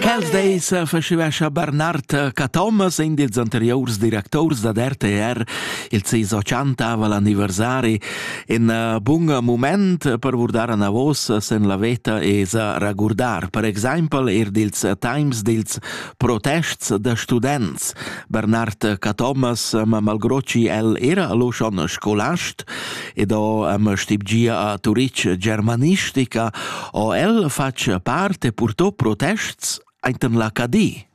Quels deis faceva scha Bernard Cathomas in dils anteriors directors da RTR il ses 80 l'anniversari in uh, bun moment per vurdar anavos sen la veta e sa ragurdar per exaimpel er dils times dils protests da students Bernard Cathomas ma malgrocci el era lo schon scolast Frankfurt ed ho am stibgia a Turitg germanistica, ho el fatg parte purtò protests ainten la Cadi.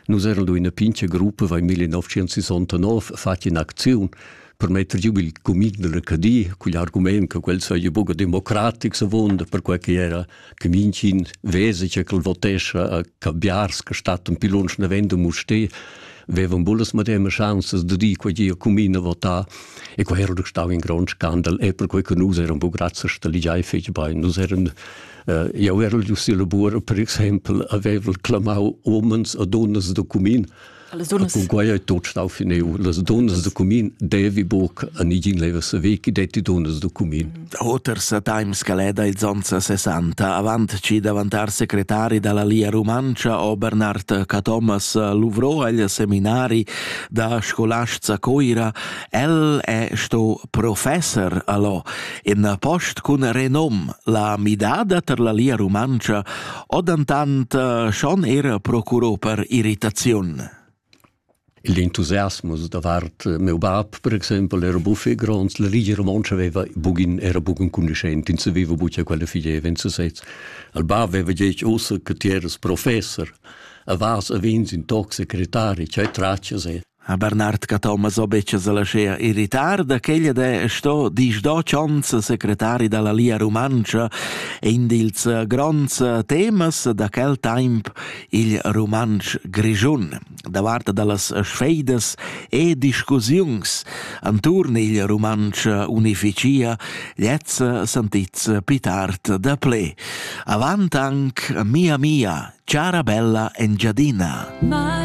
Nus eran in pincha gruppa in 1969 fat in acziun per metter giu il cumin della Cadi cugl argument che quel saja buca democratic savond per quei che era che minchin vesi che quel votescha a cabiars che stat un pilunsch navendo muste vevan bullas madema chanzas de di quei gia cumina votar e quei era stau in grond scandal e per quei che nus eran bu grazie sta ligiai fetg bein nus eran uh, jau ero giu si lavora per exempel avevel clamau omens a donnas de cumin Cunquai ei tot stau finiu. Las donnas da cumin devi buc a nigin leva sa ve chi detti donnas da cumin. Oter sa time scaleda ils onns a 60 avant ci davantar secretari dalla Lia Rumantscha o Bernard Cathomas luvrò agl seminari da scolasts a Coira. El è sto professor allo in post cun renom la midada ter la Lia Rumantscha Odantant eh, schon era procurò per irritaziun. L'entusiasmo davart eh, meu bab, per exempel, era buffé gronds, la rigia romontscha aveva bugin, era bugen conducent, ins aveva bugia quella figeva in sesez. Al bab aveva detto ossa che ti eras professor, a vas a vins in toc secretari, cioè traccias e Ha Bernard cattau masobetschas alla schea irritar da quella de sto disdo chonz secretari dalla Lia Rumantscha in dils gronds temas da quel temps il rumantsch grischun davart dallas sfeidas e discussiuns anturn il rumantsch unificia lez santits pitart da ple avant anc mia mia cara bella engiadina